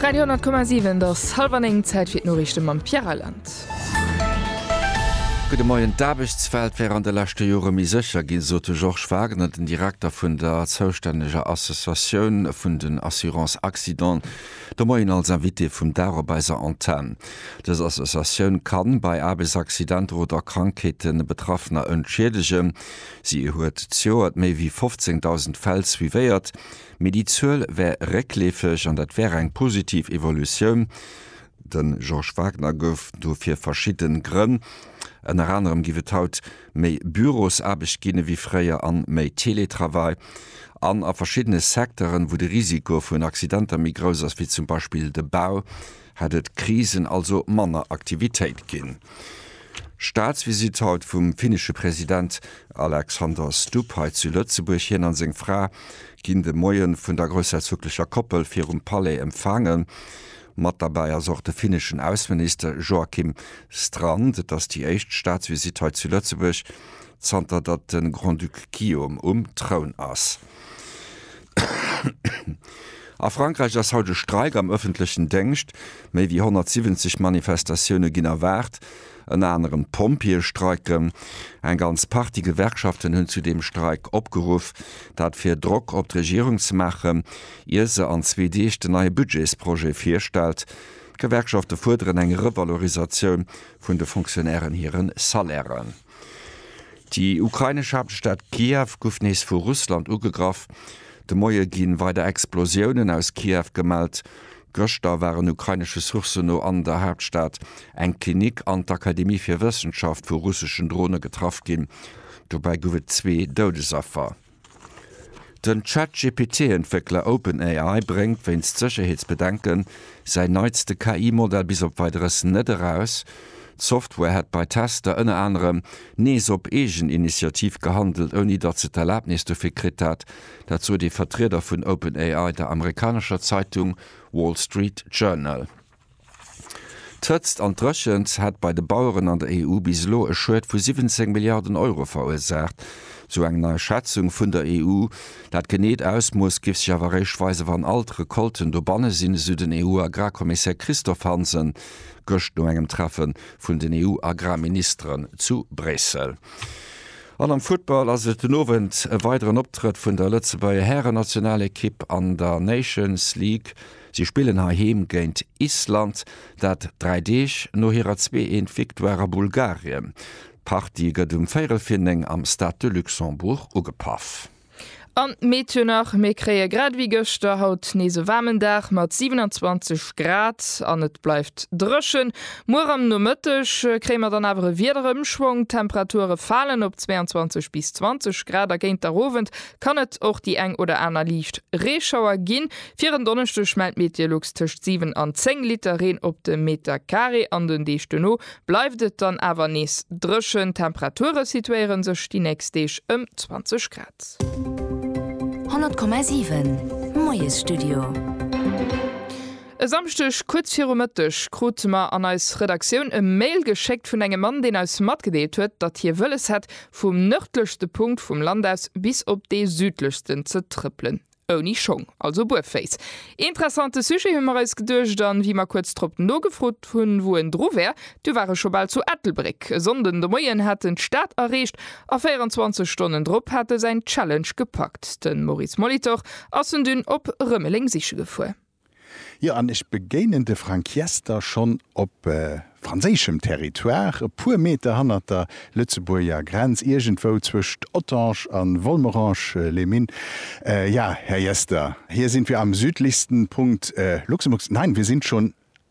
Radio 10,7 Et ass hallwer néng, Zäit fir d'Noriichte mam Pierre Reyland. Gudde Moien. D'Aarbechtswelt wär an de leschte Jore méi sécher ginn, sot de Georges Wagner, den Direkter vun der zoustänneger Associatioun vun den Assurances Accident, de Moien als Invité vum Dag op eiser Antenn. Dës Associatioun ka bei Aarbechtsaccidenter oder Krankheete Betraffener entschiedegen. Si huet d'Joert méi wéi 15.000 Fäll suivéiert. Mee déi Zuel wär réckleefeg an dat wär eng positiv Evolutioun. De Georges Wagner gouf dofir verschidde Grënn, ënner anerem giff et haut méi Bürosaarbecht ginn ewéi fréier an méi Teletravail an a verschiddene Secteuren, wou de Risiko vun Accidenter méi grouss ass, wéi zum Beispill de Bau, Hätt et Krisen, also manner Aktivitéit ginn. Staatsvisitt haut vum finnesche President Alexander Stubb hei zu Lëtzebuerg. Hien a seng Fra ginn de Moie vun der groussherzoglecher Koppel virum Palais empfaangen. Mat derbäi ass och de finneschen Ausseminister Joakim Strand. Et ass déi éischt Staatsvisitt hei zu Lëtzebuerg, zanter datt de Grand-Duc Guillaume um Troun ass. A Frankräich ass haut e Streik am ëffentlechen Déngscht, méi wéi 170 Manifestatioune ginn erwaart. Ënner anerem d'Pompjeeë streiken. Eng ganz Partie Gewerkschaften hunn zu deem Streik opgeruff, dat fir Drock op d'Regierung ze maachen, ier se an zwee Deeg den neie Budgetsprojet virstellt. D'Gewerkschafte fuerderen eng Revalorisatioun vun de Fonctionnairen hire Salairen. Déi ukrainesch Haaptstad Kiew gouf nees vu Russland ugegraff. De Moie ginn weider Explosiounen aus Kiew gemellt. Gëschter waren ukrainesche Sourcen no an der Haaptstad eng Klinik an d'Akademie fir Wëssenschaft vu russeschen Drone getraff ginn. Dobäi gouf et zwee Doudesaffer. Den Chat-GPT-Entwéckler OpenAI bréngt wéinst Sécherheetsbedenken säin neitste KI-Modell bis op Weideres net eraus. D'Software hätt bei Tester ënner anerem nees op eegen Initiativ gehandelt, ouni datt se d'Erlabnis dofir kritt hätt. Dat sot ee Vertrieder vun OpenAI der amerikanescher Zeitung Wall Street Journal. D'Hëtzt an d'Dréchent hätt bei de Baueren an der EU bis elo e Schued vu 17 Milliarden Euro verursaacht, sou eng nei Schätzung vun der EU. Dat geneet Ausmooss géif sech awer eréischt weisen, wann all d'Recolten dobanne sinn, esou den EU-Agrarkommissär Christophe Hansen gëscht no engem Treffe vun den EU-Agrarministeren zu Bréissel. An am Futtball ass et den Owend e weideren Optrëtt vun der Lëtzebuerger Hären-Nationalekipp an der Nations League. Si spillen heiheem géint Island, dat dräi Deeg no hirer Zwee-Eent-Victoire a Bulgarien. D'Partie gëtt um véierel vir néng am Stade de Luxembourg ugepaff. An d'Meet jo nach, Mir kréie grad ewéi gëschter haut nees e waarmen Dag mat 27 Grad an et bleift dréchen. Muer am Nomëtteg kréie mer dann awer e Wiederëmschwong, d'Temperature falen op 22 bis 20 Grad a géint der Owend kann et och déi eng oder aner liicht Reeschauer ginn. Fir en Donneschdeg mellt Meteolux tëscht 7 an 10 Liter Reen op de Meter Carré an den Deeg duerno bleift et dann awer nees dréchen. D'Temperature situéiere sech déi nächst Deeg ëm 20 Grad. 100,7 Moiesstudio. E Samschdeg kuerz viru Mëtteg krute mer an eis Redaktioun e Mail geschéckt vun engem Mann, deen eis matgedeelt huet, datt hie wëlles hätt, vum nërdlechste Punkt vum Land aus bis op dee südlechsten ze trëppelen. Ouni Schong, also buerféiss. Interessante Sujet, hu mer eis geduecht, an wéi mer kuerz drop nogefrot hunn, wou en dru wär, du war e scho bal zu Ettelbréck. E Sonnden de Moien hat en d'Stad erreecht a 24 Stonnen drop hat e säin Challenge gepackt. De Maurice Molitor ass en dunn op Rëmeleng siche gefuer. Jo, an ech begéinen de Frank Jester schonn op franséischem Territoire, e puer Meter hannert der Lëtzebuerger Grenz, iergendwou zwëscht Ottange a Volmerange-les-Mines. Ja, Här Jester, hier sind wir am südlichsten Punkt Luxemburgs. Nein, wir sind schon